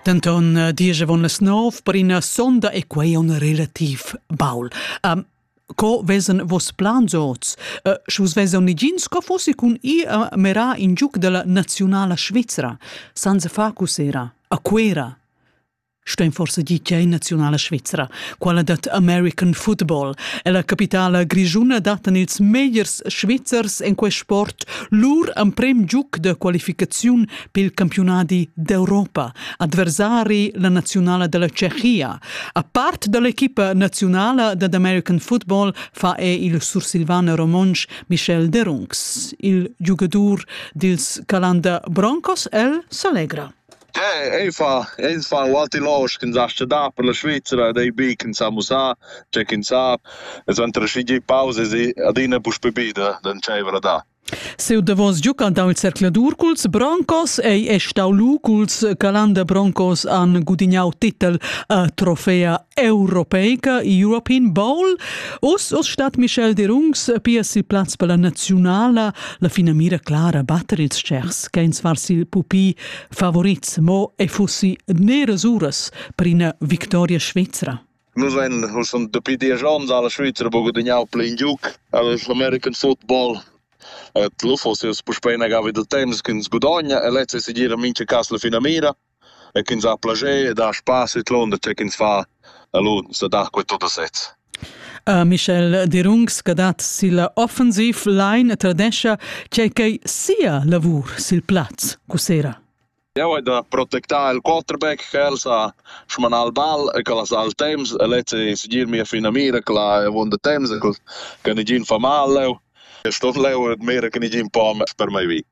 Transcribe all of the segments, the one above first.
Denton eh, diesevon las nov per ina sonda e quei on relativ baul. Um, co vesen vos plans oz? Uh, Schus vesan nigins co fossi cun i a merar in giuc della nazionala Svizzera, senza facus era, a Cuera. Stein forse di tgei nazionala Svizzera, quella dat American football, e la capitala grigiuna datan ils megliers svizzers en quei sport lur emprem giuc de qualificaziun pil campiunadi d'Europa, adversari la naziunala della Tschechia. A part dall'equipa nazionala dad American Football fa è il sursilvan romontsch Michel Derungs, il giugadur dils Calanda Broncos, el s'allegra. Eh, ei fa, ei fa Walti Losch, kin sa da per la Schweizer, dei bi kin sa musa, c'è kin sa, es wenn der schigi pause si adina pus bebida, dann c'è da. Siu davos giucan dau il zercladur culs Broncos ei è stau lu culs Calanda Broncos han gudignau titel a trofea europeica European Bowl. Oz oz stat Michel Derungs pia sil plaz per la naziunala. La finamira clara batter ils tschers che ins var sil pupi favorits mo e fussi neras uras per ina victoria svizra. Nus vein schon dapi diesch onns alla Svizra buca gudagnau pli in giug all'American football ed lu fuss ins puspei inagavi da temps ch'ins gudogna e lezza ei segira mintga cas la finamira e ch'ins ha plascher ed ha spass vidlunder tge ch'ins fa alur ins dat quei tut a sez. Michel Derungs che dat silla offensiv line tradescha tgei ch'ei sia lavur sil plaz cussera. Jeu hai da protectar il quarterback ch'el sa smanar il ball e ch'el ha sal temps e lez ei segir mia finamira quella ha avunda temps e che negin fa mal leu. E ston leu admirer che negin po per mei vi.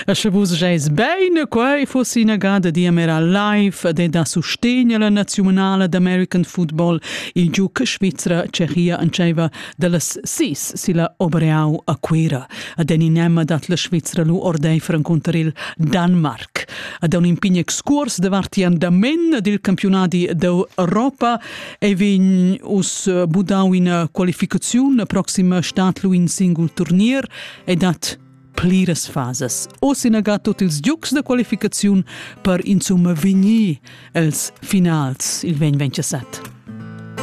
E sche vus gieis bein, quei fossi inagada diamera live ed da sustegn alla naziunala d'American football il giuc svizra Tschechia entscheiva Dallas sis silla Obreau a Cuira ad en inema dat la Svizra lu ordeifer encunter il Danmark. Ad un impign excurs de varti andamen dil campionadi d'Europa e vegn us budau ina qualificaziun la proxima stat lu in singul turnier e dat pliras fases. Oz inaga tot ils giucs da qualificaziun per insumma vegnir els finals il 2027.